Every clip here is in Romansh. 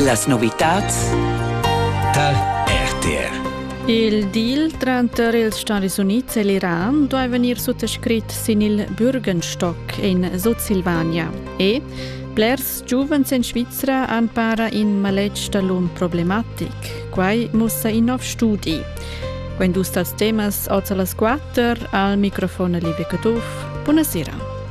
Las novitads tal RTR. Il deal tranter ils Stati Unids e l'Iran duai vegnir suttascrit sin il Bürgenstock in Sutsilvania e blers giuvens en Svizra han para in maletg da l'um problematic. Quai mussa in nov studi. Quando dus tals temas oza las quatter al microfon Liebe Caduff. Buonasera.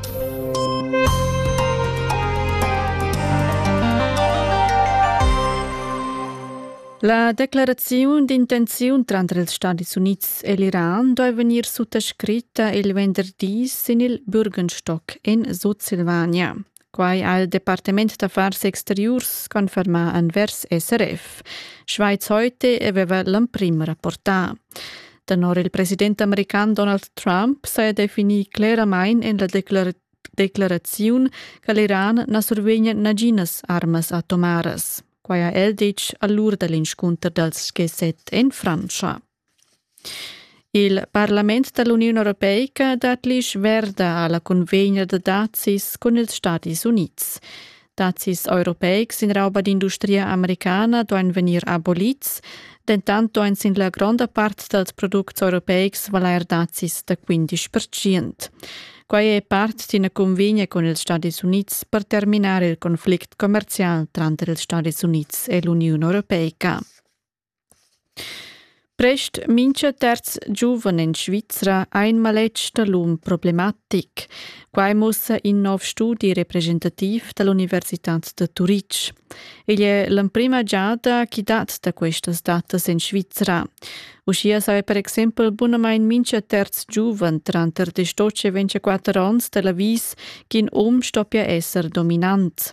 La declaraziun d'intenziun tranter ils Stadis Unids e l'Iran doi vegnir suttascritta il venderdì sin il Bürgenstock in Sutsilvania. Quai ha il Departement d'affars exteriurs confermà envers SRF. Schweiz heute aveva l'emprim rapportà. Tenor il president american Donald Trump saja definì cleramain en la declaraziun declaraziun che l'Iran na survegnia naginas armas atomaras. Quai ha el ditg all'ur da l'inscunter dals G7 en Frantscha. Il Parlament dall'Uniun Europeica dat l'isch verda alla convegna da dazis cun ils Stadis Unids. Dazis europeics in rauba d'industria americana duain vegnir abolids, dentant duain sin la gronda part dals products europeics valair dazis da 15 Quai è part d'ina cunvegna cun ils Stadis Unids per terminar il conflict commerzial tranter ils Stadis Unids e l'Uniun Europeica. Prest mincha terz giuven in Svizra ha ün maletg da l'um problematic. Quai muossa in nouv studi representativ da l'Università da Turitg. Igl è l'emprima giada chi dat da questas datas in Svizra. Uschia saja per exempel bunamain mincha terz giuven tranter distocce 24 ons da l'avis ch'in um stoppia esser dominant.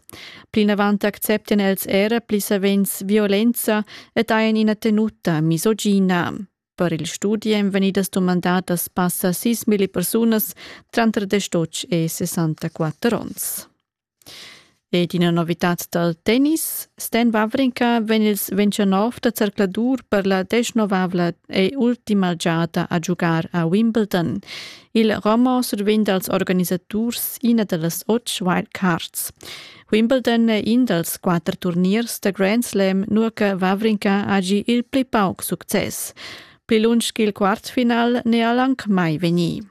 Plinavant acceptian els era pli savens violenza ed hajan ina tenuta misogina. Per il studi èn vegnidas dumandadas passa 6.000 persunas tranter 18 e 64 onns. Ed ina novitad dal tennis. Stan Wawrinka vegn ils 29 da zercladur per la desnovavla e ultima giada a giugar a Wimbledon. Il roman survegn dals organisaturs ina da las otg wildcards. Wimbledon è in dals quatter turniers da Grand Slam, nua che Vavrinka hagi il pli pauc success. Pli lunsch ch'il quartfinal n'è el anc mai vegnì.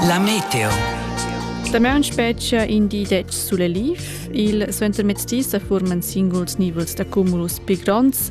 La meteo. Damaun spetga in di dec sulle liv. Il suentermezzdi sa furman singuls nivels da cumulus pli gronds